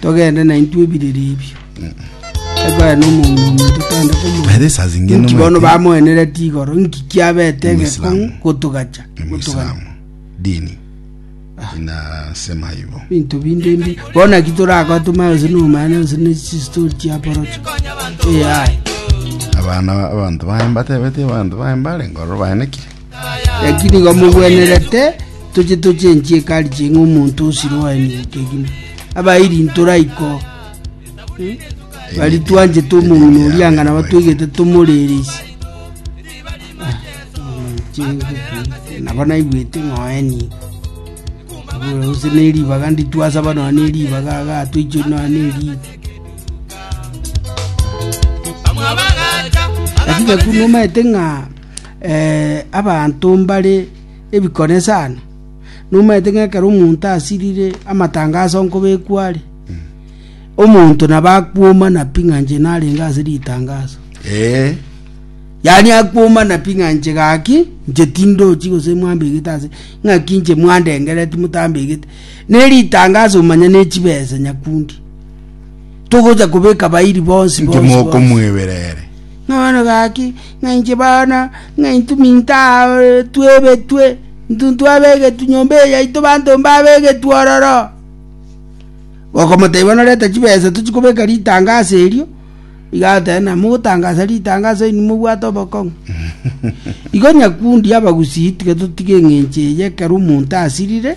togende naintwe ebiriri ebio ekogera nomoomia omonto togende komoomia By this as ingene nki bono omwete- bamoeneretie igoro nki kiabete egekong'u Omoislamu. gotogacha gotogacha Omoislamu. Dini. Inasema hivyo. binto binde mbi bono naki torakora tomanye gose nomanya gose ne chistori chia porocho ai Abana abantu baye mbatebete abantu baye mbare ngoro baenekire. Naki nigo mogwenerete toche toche enchie kari ching'a omonto osire oaenie ekegima abairi ntoraiko hmm? bari twanchete omong'ina oria ng'a nabo twegete tomorereisi ah, nabo naigwete ng'oenie ose neribaga nditwasaba noa neribaga aga twaicho noa neribaga lakini ekuna omaete ng'a Abanto mbare ebikone sana, nomaete ng'a ekero omonto asirire amatangaso nkobekwa are, omonto nabo akwomana pi ng'a inche narenge ase ritangaso. Eh. Yaani akwomana pi ng'a inche gaki, inche tindochi gose mwambegete ase, ng'aki inche mwandengereti motambegete. Ne ritangaso manya ne chibesa nyakundi. Togocha kobeka bairi bonsi Inche bonsi bonsi. mokomwebera ere. Nonya gaki, ng'a inche bana, ng'a intwe minto aa twebetwe, intwe ntwabegetwe nyomba eye yaito banto mbabegetwe ororo. Bakamotebia buna reta chibesa tochie kobeka ritanga ase erio, iga agoteba na mogotangasa ritanga ase oino mobwate obokong'u. Igo nyakundi abagusii tiga totige eng'encho eye ekero omonto asirire,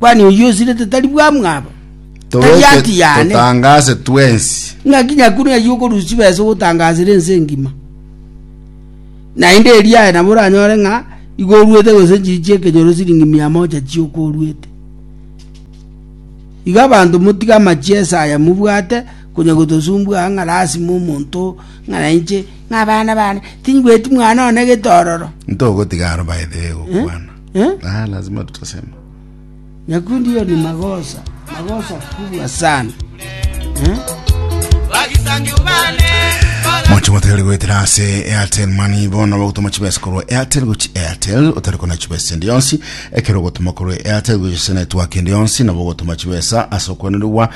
Kwani oyio osirete tari bwamwabo? Tari Toroche haki yane? totangase twensi. Ng'aki nyakune eyio okorusia chibesa ogotangasera ense engima. Naende erio aye nabo oranyore ng'a igo oruete gose enchiri chi'ekenyoro siringi mia moja chi'oka oruete. Iga abanto motige amachiesa aya mobwate konya gotosumbua aa ng'a lasima omonto ng'a nainche ng'a abana bane tinyigweti mwana one getororo. Ntogotiga aro by the way gokwana. Eh? Ah, lazima tutasema. Nyakundi hiyo ni makosa, makosa kubwa sana. Eh? mwacho mwatari gwetera ase airtel mani bono bagotoma chibesa korwa airtel gochi airtel otari kona chibesa endi yonsi ekero ogotoma korwa airtel gochi ase network endi yonsi nabo ogotoma chibesa ase okwenerigwa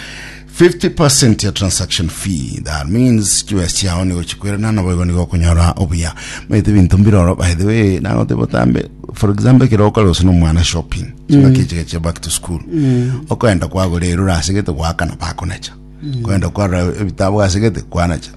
Fifty percent ya transaction fee, that means chibesa chiao nigo chikwerana naboigo nigo okonyora obuya. Maete ebinto mbiroro by the way, nagoteba otambe for example ekero okore gose nomwana shopping, chingaki echiga chia back to school, okoenda kwagora erura asegete goakana bakonacha, okoenda kwarora ebitabu asegete kwanacha,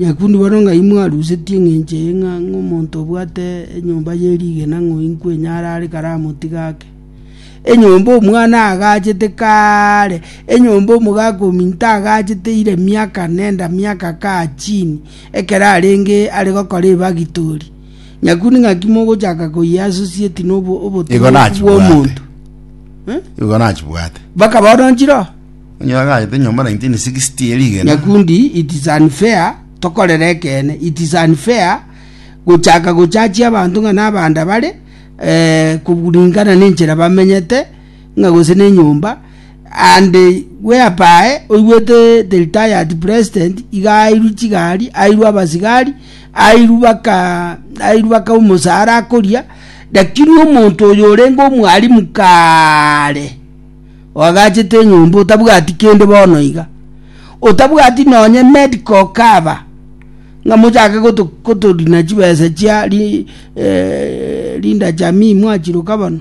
Nyakundi bono ng'ai mwarusetie engencho eye ng'a omonto obwate enyomba ye rigena ng'oinkwe onye arare kare amoti gake? Enyomba omwana agachete kare, enyomba omogaka ominto agachete ire miaka nenda miaka kaa chini, ekero arenge are gokora ebagitori. Nyakundi ng'aki mogochaka koyeasosieti na obo- Igo obotongoku nachibwate. bw'omonto? Eh? Igo nachibwate. Baka bono nchire oo. Onye agachete nyomba 1960 ye rigena. Nyakundi it is unfair tokorere ekeene it is unfair gochaka gochachia abanto ng'a nabanda bare eh, kuringana nenchera bamenyete ng'a gose nenyomba and whereby oigwete the retired president iga airwe chigari airwe abasigari airwe baka airwe baka omosara akoria lakini omonto oyo orenge omwalimu kaare oagachete enyomba otabwati kende bono iga, otabwati nonye medical cover, ng'a mochake goto gotorina chibesa chia ri eh, Linda Jamii mwachiruka bono.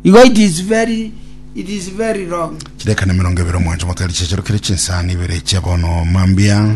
Igo it is very, it is very wrong. chidakika na emerongo ebere omonto motoe richechero kere chinsani ibere chia bono mambia